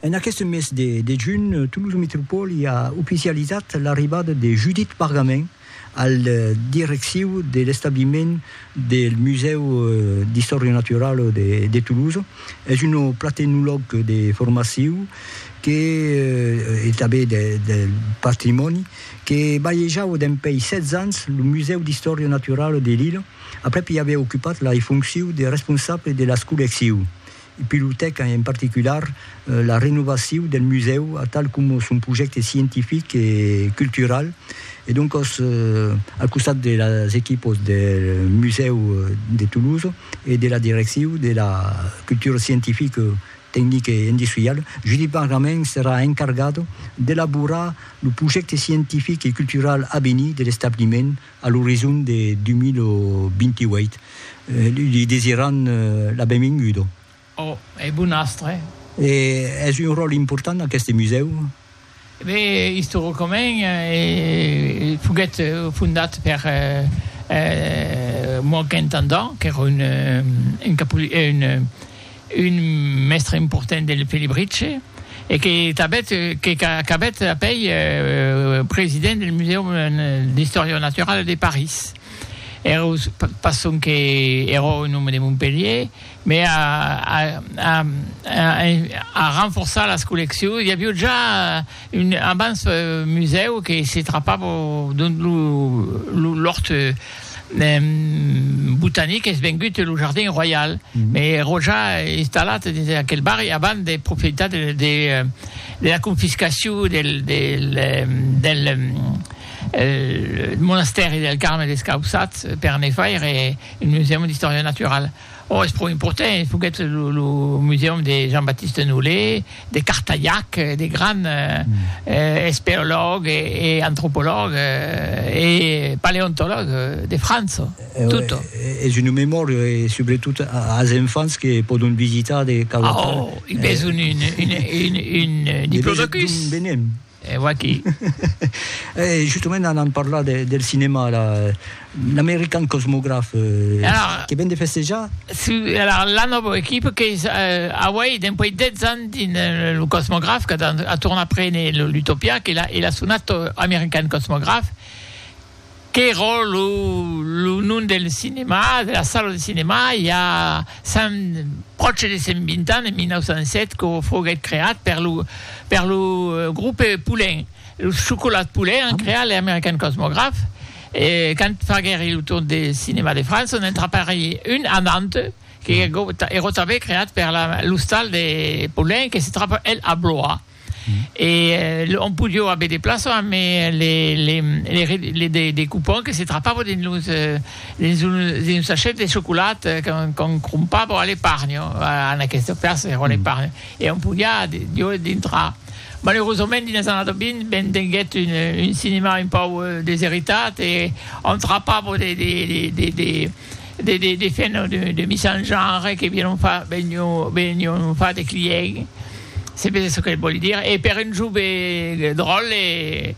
En aqueste mes de de junh, Toulouse Métropole a oficializat l'arribada de Judith Pargamin al direcciu de l'establiment del Musèu d'Istòria Naturala de de Toulouse. Es un platenolog de formaciu que e tanben de de patrimòni que balhejava dempèi 16 ans lo Musèu d'Istòria Naturala de Lille. Aprèp i aviá ocupat la fonciu de responsable de las collecciu. I pilotèc en particular la renovaciu del musèu atal coma son projècte scientific e cultural e doncòs al costat de las equipos del musèu de Toulouse e de la direcciu de la cultura scientifica, tecnica e industriala, Judit Bargament serà encargat d'elaborar lo projècte scientific e cultural avenir de l'establiment a l'orizon de 2028. Li desiran la benvinguda. Ò, e bon astre. E es un ròl important aqueste musèu? E ben, istoricament, foguèt fondat per Moagh Intendant, qu'èra un un mèstre important del Felibritge e que tanbèt que qu'acabèt apèi president del Musèum d'Istòria Naturala de París. Ero pas sonque ero un òme de Montpelhier, me a a a a a renforçar las colleccions, i avió ja Un abans musèu que se trapava dont lo lòrt botanic es vengut lo jardin royal, me ero ja installat dins aquel barri abans de profitar de la confiscacion del monastèri del Carme Descausats per ne faire un musèu d'istòria naturala. Ò, es pro important, foguèt lo musèum de Jean-Baptiste Nollet, de Cartayac, de grand esperològ e antropològ e paleontològ de França, tutto. Es una memòria e subretot as enfants que pòdon visitar de quauquartà. Ò, i besonh un diplodocus. D'on venem? E vaquí. E justament anam parlar del cinèma, l'American Cosmograph, que ven de festejar? Si, alara la nòva equipa qu'es auei dempuèi 10 ans dins lo Cosmograph, qu'a tornat prene l'Utopia, e l'as sonat American Cosmograph. qu'èra lo lo nom del cinemà, de la sala de cinemà, i a cent, pròche de cent vint ans, en 1907, que foguèt creat per lo per lo grupe Poulin, los Chocolats Poulin an creat le American Cosmograph, e quand faguèri lo tour de cinemà de França, n'en trapèri un a Nantes, que èra tanben creat per l'ostal de Poulin, que se trapa el a Blois. e on podió aver de plaço amb de cupons que se trapavo dins un sachet de chocolat qu'on crompavo a l'eparnho, en aqueste cas era l'eparnho, e on podiá jo dintrar. Malerosament, dins los annadas 20, ben tenguèt un cinèma un pauc deseritat e on trapavo de de fèr no de mis en genre que vièron far venion far de client se vede çò que vòli dire e per un jove dròl e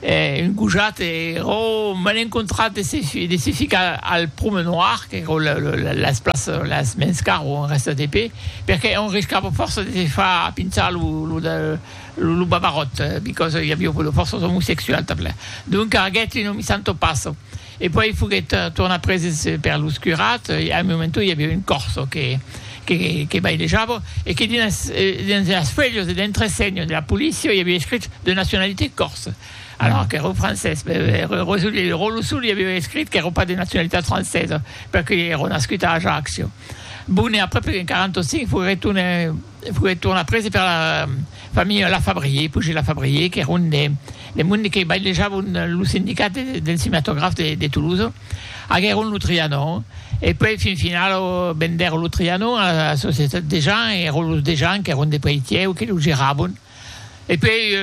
un gojat ero m'an encontrat de se ficar al promenoir qu'ero las plaças las mens car o rèsta de pe perque on riscava fòrça de se far pinçar lo babaròt because i aviá fòrça omosexuals tanpla donc aguèt un omissant o passo E puèi foguèt tornat preses per los curats e a un momento i aviá un corso que que bailejava e que dins dins las fuèlhas e l'entresenha de la polícia i aviá escrit de nacionalitat corse alors qu'èra francés Rosolí Rolosol i aviá escrit qu'èra pas de nacionalitat francesa perque èra nascut a Ajaccio bon e après en 45 foguèt tornat E foguèt tornat prese per la familha Lafabrier, Pujé Lafabrier, qu'èra un des monde que bailejavon lo sindicat del cinematograf de Toulouse. Aguèron lo Trianon e puèi fin final vendèron lo Trianon a la societat Dejean e èron los Dejean qu'èron de Peitièu que lo geravon. E puèi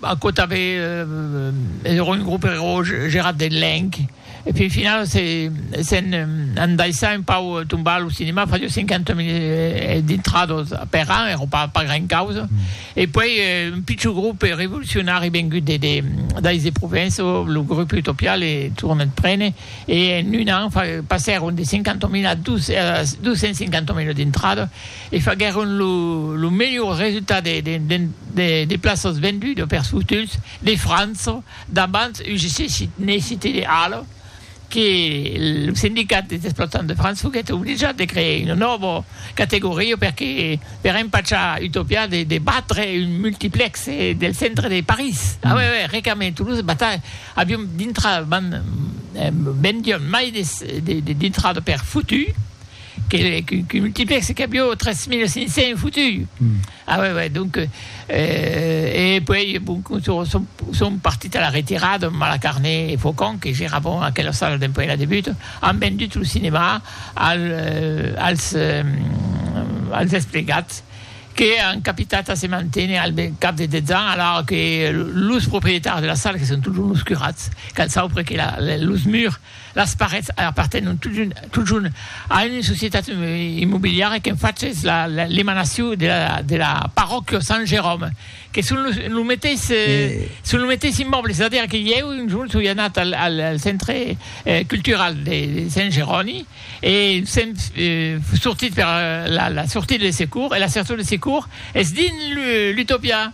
aquò tanben es un grop erós gerat de lenc e fin finau s'en andaissà un pau tombar a lo cinema fasió 50 mil dintrados per an èra pas pas gran causa e puèi un pichon grop revolucionari vengut de de dais de Provenço lo grop Utopia le tornèt prene e en un an passèron de 50 mil a 250 mil dintrados e faguèron lo melhor resultat de plaças vendudas pels futuns de França davant UGC ne Cité de Halle que lo sindicat des exploitants de França foguèt obligat de crear una nòva categoria perque per empachar Utopia de batre un multiplex del centre de París a uèi uèi recament Toulouse batalha avion dintrada vendion mai de dintrada per futur Que le que multiplexe que avió 3500 fotuts. Ah ouais ouais donc euh, e puèi bon son son partit a la retirada Malacarné e Faucon que geravon a aquela sala dempuèi la debut an vendut lo cinemà al als als desplegats que an capitat a se manténer al cap de 10 ans alara que los proprietaris de la sala que son totjorn los curats qu'an saupre que la los murs Las parets apartenon totjorn a una societat immobiliara qu'en fach es l'emanacion de la parròquia Sant Jeròme, que son lo meteis immòble, es a dire que ieu un jorn soi anat al centre cultural de Sant Jeroni e sèm sortit per la sortida de secours e la sortida de secours es dins l'Utopia.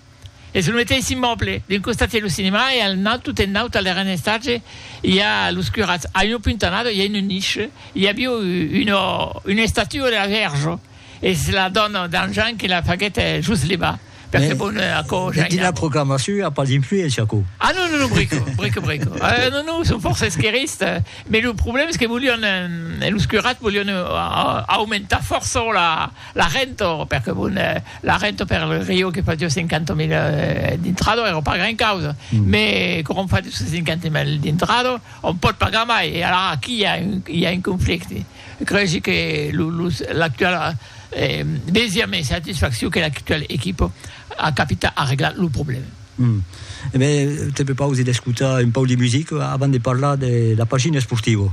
Es lo meteis immòble, d'un costat es lo cinema e al naut, tot en naut, al darren estatge, i a los curats, a una puntanada, i a una nicha, i aviá una, una estatua de la Vèrja. Es la dòna d'en Jean que la faguèt just levar, perque bon, aquò ja i n'a. Proclamacion i a pas d'influéncia, aquò. Ah non, non, non, brico, brico, brico. Ah non, non, son fòrça esquerrista, mès lo problèm es que volián, los curats volián aumentar fòrça la. La rento, per que bon, la rento per le rio que fasió 50 mil d'intrado èra pas gran causa, mès quau'òm fa dus-cents cinquanta mil d'intrado, òm pòt pagar mai, e alara aquí i a un, i a un conflicte. Cregi que lo, los, l'actual, vesia mai satisfacciu que l'actual equipo a capita a reglar lo problema. Uhm. E ben, te prepausi d'escotar un pauc de musica avant de parlar de la pagina esportiva.